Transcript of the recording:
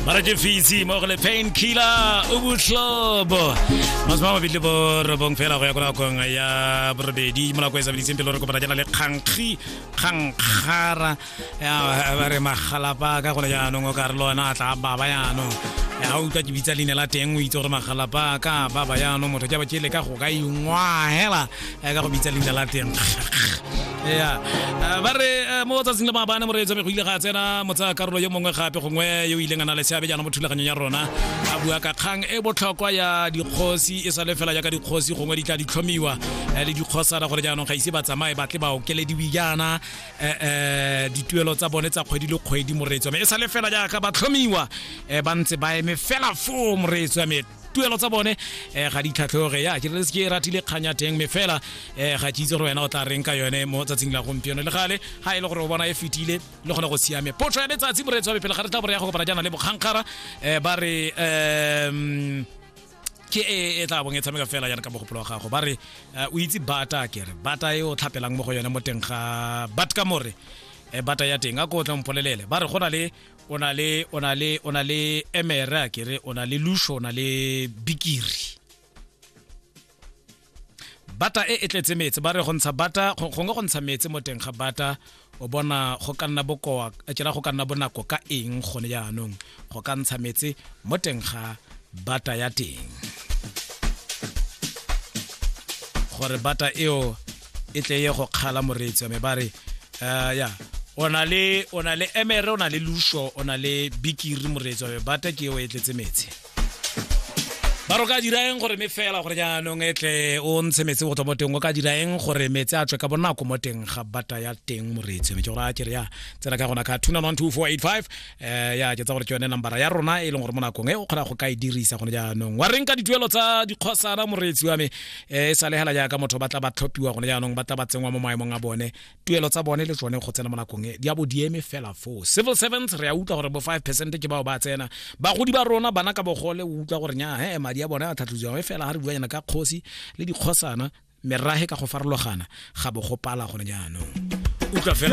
mara ke fitse mo go le pain killer o botlhobo masome a mabedi bo robong fela go ya ko nakong ya borobedi mo nako e sabeditseng pele re kopana jana le kgankgi kgankgara ba re magalapa ka gone jaanong o ka re le ona a tla baba jaanong ga utlwa ke bitsa leina la teng o itse gore magalapa ka baba jaanong motho ke ba ke le ka go ka ingwa hela a ka go bitsa leina la teng ya eh, ba re eh, mo tsatsing le maabane moreetso me go ile ga tsena motsa karolo yo mongwe gape gongwe yo o ileng a na le seabe jaana mo thulaganyong ya rona a bua ka kgang e botlhokwa ya dikgosi e sa le fela jaaka dikgosi gongwe di tla ditlhomiwa eh, le dikgosana gore jaanong ga ise ba tsamaye ba tle ba okelediwe jaana um dituelo tsa bone tsa kgwedi le kgwedi moreetso me e sa le fela jaaka ba tlhomiwa ba ntse ba eme fela foo moreetso ya me tuelo tsa bone um ga di tlhatlhoge ya ke re se ke ratile kgang ya teng me fela um ga ke itse gore wena o tla reng ka yone mo tsatsing la gompieno le gale ga e le gore o bona e fetile le gone go siame potso ya letsatsi moreetsi wa bepele ga re tla bore ya go kopana jaana le bokgankgara um ba re um ke e e tla bong e tshameka fela yana ka mogopolo wa gago ba re eh, o itse bata ke re bata e o tlhapelang mo go yone mo teng ga bat ka more eh, bata ya teng a ko o tla mpolelele ba re go na le o na le o na le o na le emere a kere o na le lusho o na le bikiri bata e e tletse metsi ba re go ntsha bata gongwe go ntsha metsi mo teng ga bata o bona go ka nna bokoa kera go ka nna bonako ka eng gone jaanong go ka ntsha metsi mo teng ga bata ya teng gore bata eo e tle ye go kgala moreetsi wa me ba re uh, ya o na le o na le emere o na le lusho o na le bikiri moreetsi wa me bata ke eo e tletse metsi ba ro ka dira eng gore me fela gore jaanong e tle o ntshe metsi go tswa mo teng o ka dira eng gore metsi a tswe ka bonako mo teng ga bata ya teng moreetsi wa me ke gore a kere ya tsena ka gona ka 2912485 eh ya ke tsa gore ke yone nambara ya rona e leng gore mo nakong e o kgona go ka e dirisa gone jaanong wa reng ka dituelo tsa dikgosana moreetsi wa me eh e sa legela jaaka motho ba tla ba tlhophiwa gone jaanong ba tla ba tsenngwa mo maemong a bone tuelo tsa bone le tsone go tsena mo nakong e di a bo di eme fela foo civil servants re a utlwa gore bo 5 percent ke bao ba tsena bagodi ba rona bana ka bogole o utlwa gore nya he madi a bone a tlhatlhotsiwang e fela ga re buanyana ka kgosi le dikgosana merahe ka go farologana ga bo go pala gone jaanong utlwa fela